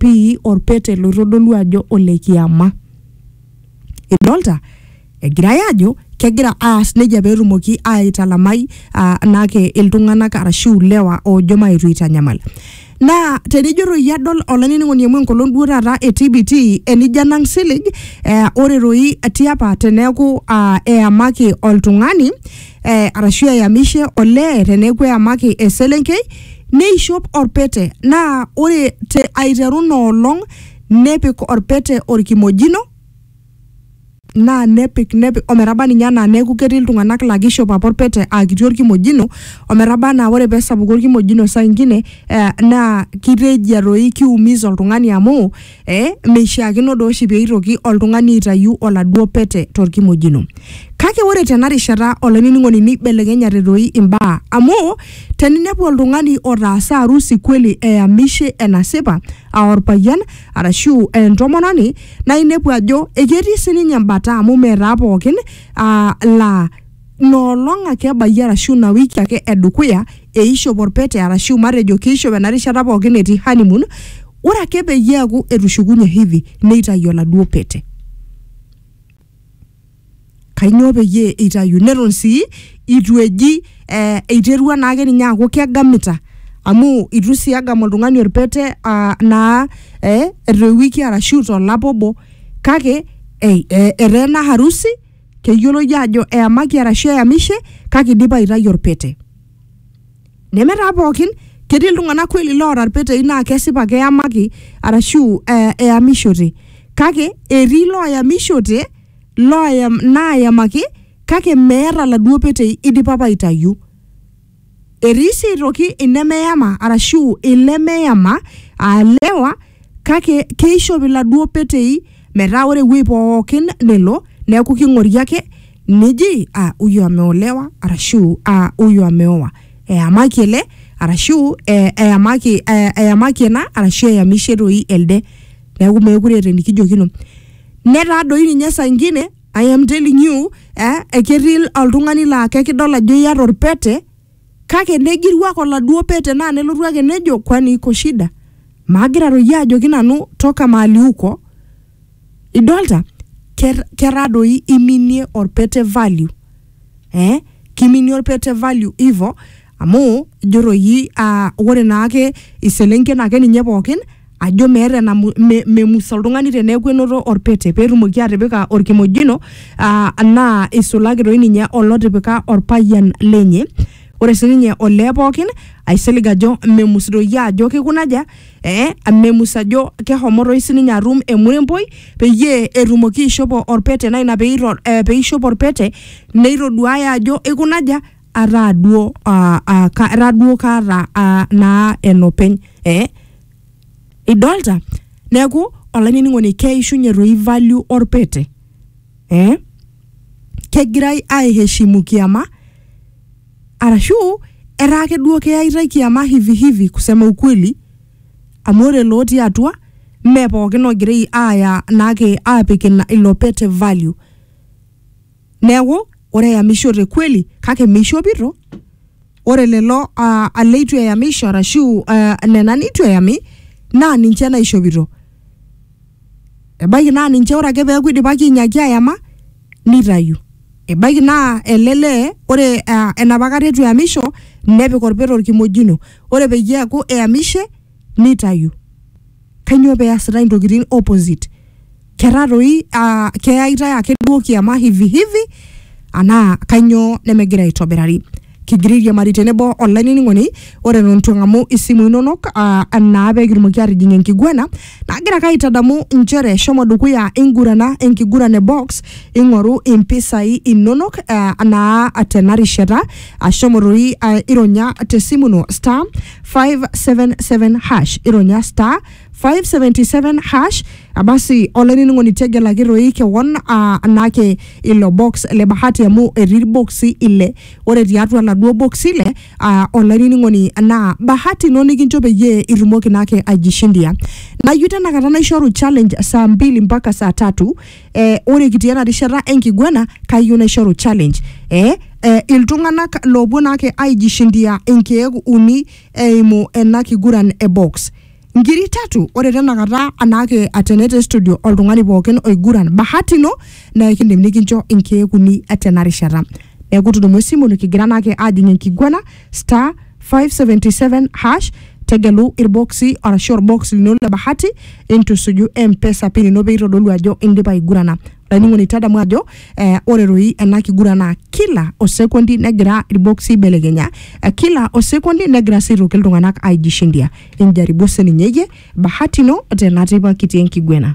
pii orpete loitodolu ajo ole kiama. Idolta? Egirai ajo kegira aas nejia pee etumoki aitalamai ah, naake iltung'anak arashu ilewa oojo maetu aitanyamal. Naa tenijo toi adol olainining'oni amu enkolong duo taata e TBT enijo anang silig eh, ore toi tiapa teneeku ah, eyamaki oltung'ani eh, arashu eyamishe olee teneeku eyamaki eselenkei Neishop olpete, naa ore te aiteru ina olong nepik olpete olkimojino, naa nepik nepik o metaba ninye anaa neaku ketii iltung'ana laa keishop apa olpete aa kiti olkimojino o metaba anaa ore pee esapuku olkimojino saa ingine naa keitejia doi keiumiza oltung'ani amu Eh, meishiakino doo oshi pee eitoki oltung'ani aitayu oladuo pete torkimojino. Kake ore tena rishata olainining'oni neibelekenyate doi imbaa amu teninepu oltung'ani otaasa arusi kweli eyamishe enasipa aa orpayian arashu aa entomononi naa inepu ajo eketii sininye embata amu meetaa pookin aa laa Ina olong ake ebayie arashu ina wiki ake e dukuya eishop olpete arashu matejo keishop ena rishata pookin etii honeymoon, ore ake peyie eaku etushukunye hedhi neitayu oladuo pete. Kainyoo peyie eitayu? Neton sii eitu eji eh, eiterua naake ninye aaku kegamita amu eitu sii egam oltung'ani olpete ah, naa eh, te wiki arashu to lapa obo kake eh, etaa ena harusi. keyioloi aajo eyamaki arashu eyamishe kake idipa aitayu orpete neme taa pookin ketii iltung'anak kweli loota irpetei naa kesipa keyamaki arashu eh, eyamishote kake etii looyamishote looyam naayamaki kake meeta laduo petei idipa apa aitayu Etii sii aitoki inemeyama arashu ilemeyama aa lewa kake keishop iladuo petei metaa ore ewueji pookin nelo neeku king'ori ake neji ah, huyu ameolewa arashu ah, huyu ameoa. Eyamaki ele arashu eh, eyamaki eh, eyamaki ena arashu eyamishe toi elde. Neeku meekure eeta enikijokino. Netaa doi ninye saa ingine I am telling you eh, eketii oltung'ani laa kekidol ajo iata orpete kake negiru ake oladuo pete naa nelotu ake nejo kwani iko shida maagira toyie ajoki nanu toka mahali uko idolta Ker- ketaa doi iminie orpete value eh, kiminie orpete value hivo amu ijo toi uh, ore naake iselenken ake ninye pookin ajo meeta enamu- me- memus oltung'ani teneeku enoto orpete peetumoki atipika orkimojino uh, naa isulaki toi ninye olotipika orpayian lenye ore sininye olee pookin aisilig ajo memus doi ajo kikunaja eh, memus ajo kehomo toi sininye atum emuremboi peyie etumoki aishopo orpete naa ina peito, eh, peishop orpete neitoduaya ajo ikunaja ataa duo ah, ah, ka- ara duo kaata ah, naa enopeny eh? idolta neeku olainining'oni keishunye toi value orpete eh? kegirai aiheshimu kiama arashu etaa ake duo keyaitae kiama hivi hivi kusema ukweli amu ore lootii atua mme pookin ogirai aaya naake aapik ina ilo pete value Neaku, ore eyamishote kweli kake meishopito, ore lelo uh, leitu eyamisho arashu uh, nena neitu eyami naa ninche naishopito. Ebaiki naa ninche ore ake peaku eidipaki ainyaki ayama neitayu. Ebaiki naa ele lee ore uh, enapa kata eitu eyamisho nepik olpeta olkimojino, ore peyie eaku eyamishe neitayu. kainyoo pee easitai intokitin opposite ketaa toi ah, keyaitae ake duo kiama hivi hivi anaa kainyoo nemegira aitobirari kigira airiamari tenebo olainining'oni ore eton itu eng'amu isimu inonok ah, naa pee kitumoki aatijing enkiguana nagira ake aitadamu inchere shomo dukuya ingurana enkiguran e box ing'oru impisai inonok ah, naa tena rishata ashomo toi ah, ironya tesimu ino star five seven seven hash ironya star 577 hash abasi olainining'oni tegelaki toi kewon ah, anake ilo box le bahati amu etii irboksi ile ore tiatua laduo boksi ile ah, olainining'oni naa bahati ino nikincho peyie itumoki naake aijishindia nayieu tenakata naishoru challenge saa mbili mpaka saa tatu eh, ore kitii ena rishata enkiguana kayieu naishoru challenge eh, eh, iltung'anak loopuo naake aijishindia inkeek uni eimu ena kiguran e box nkiri tatu ore tenakata anaake atene te studio oltung'ani pookin oiguran bahati ino naa ekindim nikincho inkeek uni tena rishata neeku tudumu esimu nikigira naake ajing enkiguana star 577 hash tegelu irboksi arashu orbox lino le bahati intusuju mpesa pin ino peitodolu ajo indipa aigurana olainining'oni tadamu ajo eh, ore doi ena kiguran naa kila osekondi negira irboksi aibelekenya eh, kila osekondi negira sii aitoki iltung'anak aijishindia injaribu sininye iyie bahati ino tenatipa kitii enkiguena